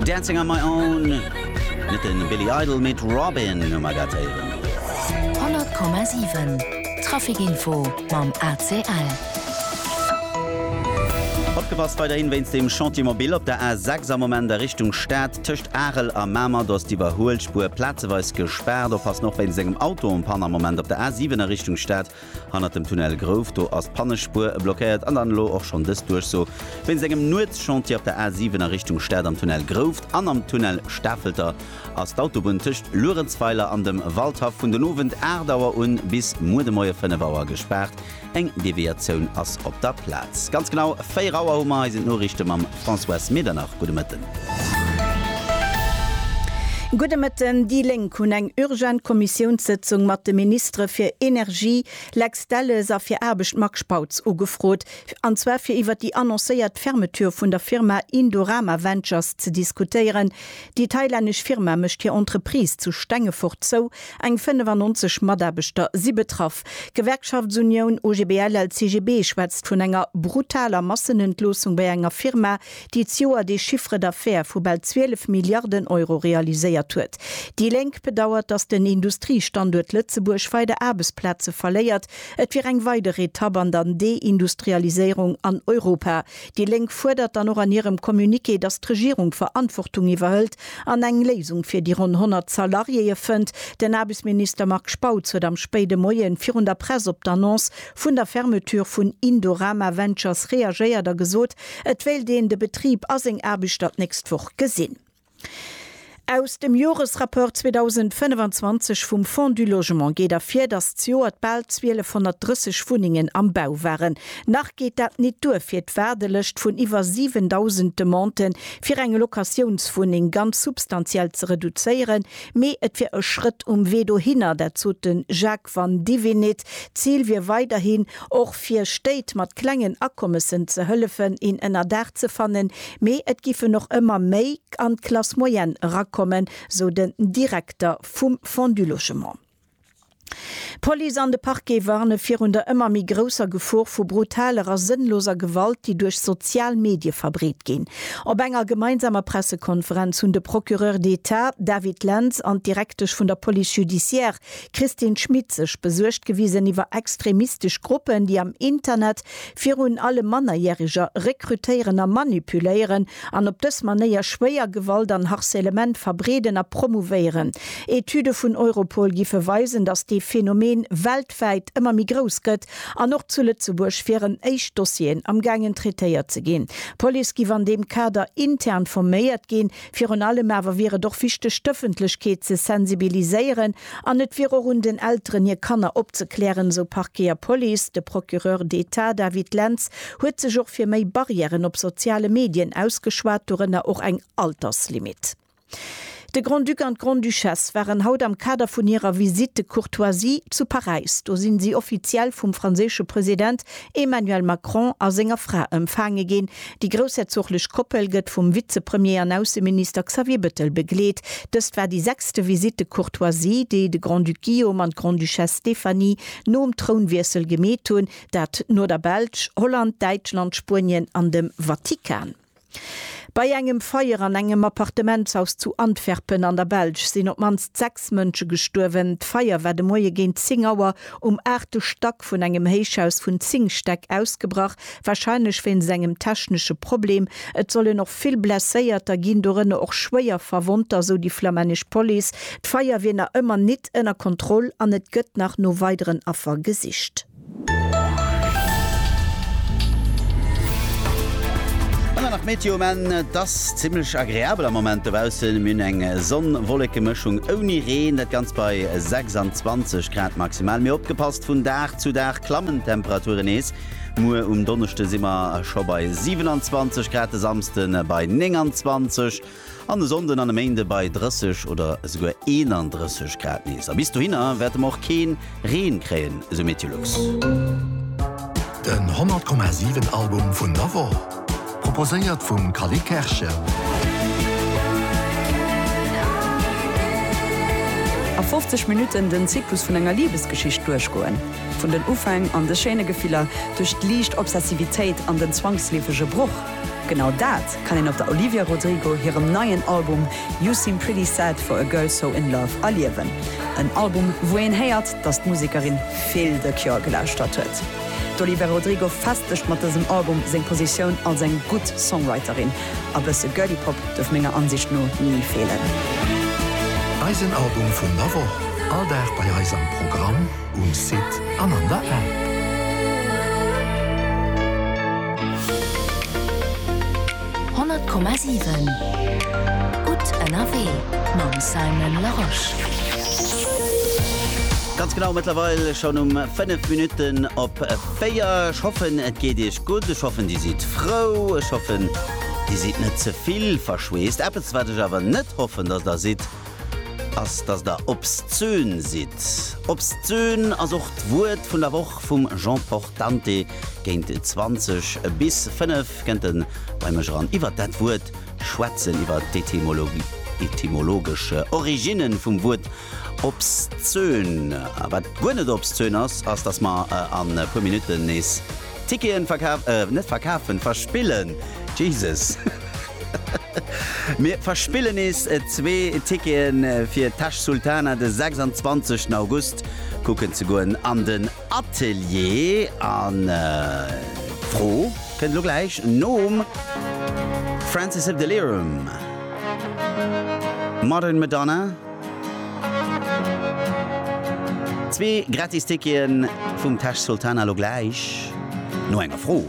Dancing on my own, net de Billy Idol, mee d'Robyn hu mer dat héieren. 100,7 Traficinfo mam ACL. Opgepasst weiderhin wéinst dem Chantier Mobil op der A6 am Moment a Richtung Stad. Tëscht Arel a Mamer do ass d'Iwwerhuelspuer plazeweis gespaart. Oppassen och wéinst engem Auto en panne am Moment op der A7 a Richtung Stad. Hannert dem Tunnel Grouf, do ass d'Pannespuer blockéiert an dann elo och schonn dës Duerchso wéinst engem Nuetschantier op der A 7 a Richtung Stad. Am Tunnel Grouf an am Tunnel Stafelter ass d'Autobunn tëscht Luerenzweiler an dem Waldhaff vun den Owend 8 Auer un bis muer de Moie 5 Auer gespaart. Eng Deviatioun ass op der Plaz. Ganz genau 4 Auer hu mer eisen Noriichte mam. Françoise Medernach, gudde Mëtten. Gudde Mëtten. Déi Lénk hunn eng urgent Kommissiounssëtzung mat de Ministere fir Energie, Lex Delles, a fir Aarbecht, Marc Spautz, ugefrot, an zwar fir iwwer déi annoncéiert Fermeture vun der Firma Indorama Ventures ze diskutéieren. Déi thailännesch Firma mécht hir Entreprise zu Stengefort zou Eng 95 Mataarbechter si betraff. D'Gewerkschaftsunioun OGBL-LCGB schwätzt vun enger brutaler Massenentloossung bei enger Firma, déi d'Joer dee Chiffre d'affaires vu bal 12 Milliarden Euro realiséiert huet. Déi Lénk bedauert, datt den Industriestanduert Lëtzebuerg weider Aarbechtsplaze verléiert. Et wier eng weider Etapp an der Deindustrialiséierung an Europa, Déi Lénk fuerdert dann och an hirem Communiqué, datt d'Regierung Verantwortung iwwerhëlt an eng Léisung fir déi ronn 100 Salariéeë fënnt. Den Aarbechtsminister Marc Spautz huet am spéide Moie virun der Press op d'Annonce vun der Fermeture vun Indorama Ventures reagéiert a gesot, et wéilt een de Betrib a seng Aarbechter d'nächst Woch gesinn. Aus dem Joresrapport 2025 vum Fonds du Logement geet ervir, datt zejoert bal 1230 Wunnengen am Bau waren. Nach geet dat nit duer fir d'Waardelëscht vun iwwer 7.000 Demandë fir eng Locatiounswunneng ganz substantiell ze reduzéieren, mee et wier e Schrëtt um Wee dohinner, dat sot de Jacques Vandivinit, D'Zil wier weiderhin, och fir Stéit mat klengen Akommessen ze hëllefen, een Ënnerdaach ze fannen, mee et giffen och ëmmer méi an d'Classe moyenne erakommen, sou den Direkter vum Fonds du Logement. D'Police an de Parquet warne virun der ëmmer méi grousser Gefor vu brutaler a sënnloser Gewalt, déi duerch sozial Medie verbreet ginn. Op enger gemeinsamer Pressekonferenz hunn de Procureur d'Etat David Lentz an d'Direktesch vun der Police judiciaire Christine Schmit, Sech besuergt gewisen iwwer extremistesch Gruppen, déi am Internet virun allem Mannerjäreger rekrutéieren a manipuléieren an op dës Manéier schwéier Gewalt an Harcèlement verbreeden a promouvéieren. Etüde vun Europol géife weisen, datt dee Phänomen weltwäit ëmmer méi grouss gëtt an och zu Lëtzebuerg wieren éischt Dossieren am gaangen traitéiert ze ginn. D'Police géif an deem Kader intern forméiert ginn. Virun allem awer wier et och wichteg d'Ëffentlechkeet ze sensibiliséieren an et wier och un den Elteren hir Kanner opzeklären, esou Parquet a Police. De Procureur d'Etat David Lentz huet sech och fir méi Barrièren op soziale Medien ausgeschwat, dorënner och eng Alterslimit. De Grand-Duc an d'Grande-Duchesse waren haut am Kader vun hirer Visite de courtoisie zu Paräis. Do sinn si offiziell vum franséische President Emmanuel Macron a senger Fra ëmfaange ginn. Déi groussherzoglech Koppel gëtt vum Vizepremier an Ausseminister Xavier Bettel begleet. Dëst war déi sechste Visite de courtoisie, déi de Grand-Duc Guillaume an d'Grande-Duchesse Stéphanie nom Trounwiessel gemeet hunn, dat no der Belsch, Holland, Däitschland, Spuenien an dem Vatikan. Bei engem Feier an engem Appartementshaus zu Antwerpen an der Belsch sinn op d'mannst sechs Mënsche gestuerwen. D'Feier war de Moie géint 10 Auer um aachte Stack vun engem Héichhaus vun 10 Stäck ausgebrach, warscheinlech wéinst engem technesche Problem. Et sollen och vill Blesséierter ginn, dorënner och schwéier Verwonnter, sou déi flammännesch Police. D'Feier wier nach ëmmer nit ënner Kontroll an et gëtt nach no weideren Affer gesicht. An dann nach d'Meteo um Enn, Et ass zimmlech agreabel am Moment dobaussen. Mir hunn eng Sonn-Wolleke-Mëschung ouni Reen, dat Ganzt bei 26 Grad maximal. Mee opgepasst, vun Dag zu Dag klammen d'Temperaturen nees. Muer um Donneschde si mer scho bei 27 Grad, de Samsde bei 29. An e Sonnden an e Méinde bei 30 oder esouguer 31 Grad nees. A bis dohinner wäerte mer och kee Reen kréien, esou Meteolux. Den 100,7 Album vun der Woch, proposéiert vum Calé Kerschen. A 50 Minutten den Zyklus vun enger Libesgeschicht duerchgoen. Vun den Ufäng an de schéine Gefiller, duerch d'liicht Obsessivitéit an den zwangsleefege Broch. Genau dat kann een op der Olivia Rodrigo hirem neien Album You Seem Pretty Sad For A Girl So In Love erliewen. En Album, wou een héiert, datt d'Musekerin vill de Cure gelauschtert huet. D'Olivia Rodrigo festegt mat dësem Album seng Positioun als eng gutt Songwriterin. A bësse Girly Pop duerf menger Ansicht no ni feelen. Eisen Album vun der Woch, all Dag bei eis am Programm. Um Site an an der App. Honnert Komma siwen Gutt ënnerwee mam Simon Larosche. Ganz genau mëttlerweil schonn um 5 Minutten op 4. Ech hoffen et geet Iech gutt, ech hoffen Dir sidd frou, ech hoffen Dir sidd net ze vill verschweesst. Eppes wat ech awer net hoffen, dass Der sidd, ass dass der obszön sidd. Obszön ass och d'Wuert vun der Woch vum Jean Portante géint 20 bis 5 kënnt en bei mech eran. Iwwert dat Wuert schwätzen, iwwert d'Etymologie, etymologesch Originnen vum Wuert obszön. A wat guer net obszön ass, ass dass mer an puer Minutten nees Ticketen verkaf, eh net verkafen, verspillen, Jesus! Mir verspillen nees zwee Ticketen fir Tash Sultana de 26 August kucken ze goen an den Atelier. An d'Fro kënnt elo gläich nom Francis Abdelirham, Modern Madonna. Zwee Gratis-Tickete vum Tash Sultana lo gläich no enger Fro.